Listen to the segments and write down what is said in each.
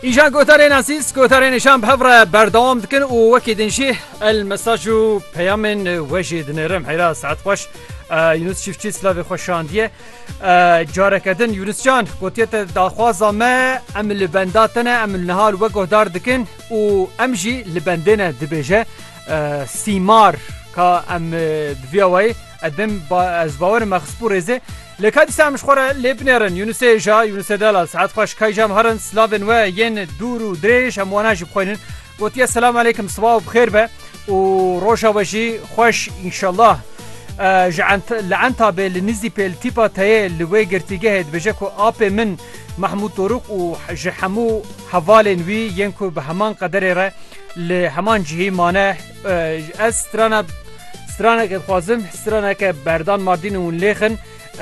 Îjan gotarên asîs gotarên nîşan bi hev re berdewam dikin û wekî din jî el mesaj û peyamên we jî dinêrim heyra saet xweş Yunus çiftçî slavê xwe şandiye careke din Yunuscan gotiye te daxwaza me em li benda te ne em niha li we guhdar dikin û em jî li bendê ne dibêje sîmar ka em diviyawayî Edim ba ez bawerim me xisbû rêzê. Lê ka dîsa em ji xwe re lê binêrin. Yunusê hêja, Yunusê delal, Sead xweş kay jam herin silavên we yên dûr û dirêj em wana jî bixwînin. Gotiye selam aleykim siba û bixêr be û roja we jî xweş înşellah. Ji ent li entabê li nizî pê li tîpa teyê li wê girtîgehê dibêje ku apê min Mahmûd Doruk û ji hemû hevalên wî yên ku bi heman qederê re li heman cihî mane Ez strana straneke dixwazim straneke berdan mardîn hûn lêxin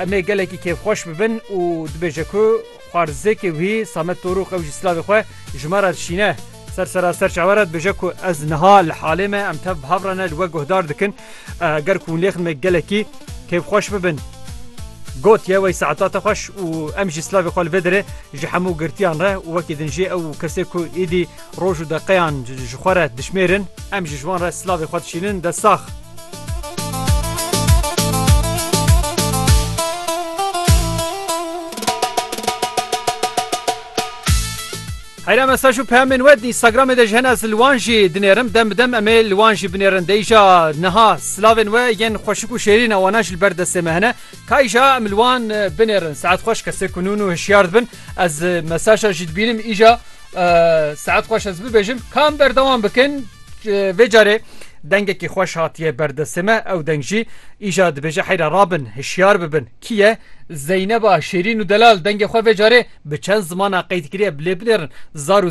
emê gelekî kêfxweş bibin û dibêje ku xwarzêkê wî Samet Torûx ew jî slavê xwe ji me re dişîne. Ser sera ser çawe re dibêje ku ez niha li halê me em tev bi hev re ne li we guhdar dikin ger ku hûn lêxin me gelekî kêfxweş bibin. Got ye wey saeta te xweş û em jî slavê xwe li vê derê ji hemû girtiyan re û wekî din jî ew kesê ku êdî Roj û deqeyan ji xwe re dişmêrin, em jî ji wan re silavê xwe dişînin. Dest sax. Heyra mesaj û peyamên we di Instagramê de ji hene ez li wan jî dinêrim. Dem bi dem em ê li wan jî binêrin. Dê îja niha silavên we yên xweşik û şêrîn e wana ji li ber destê me hene. Ka îja em li wan binêrin. Saet xweş kesê ku nûn û hişyar dibin. Ez mesaja jî dibînim îja. Saet xweş ez bibêjim kam berdewam bikin vê carê dengekî xweş hatiye berdestê me ew deng jî îja dibêje heyra rabin hişyar bibin kî ye Zeyneba şêrîn û delal dengê xwe vê carê bi çend zimana qeydkiriye bilê binêrin zar û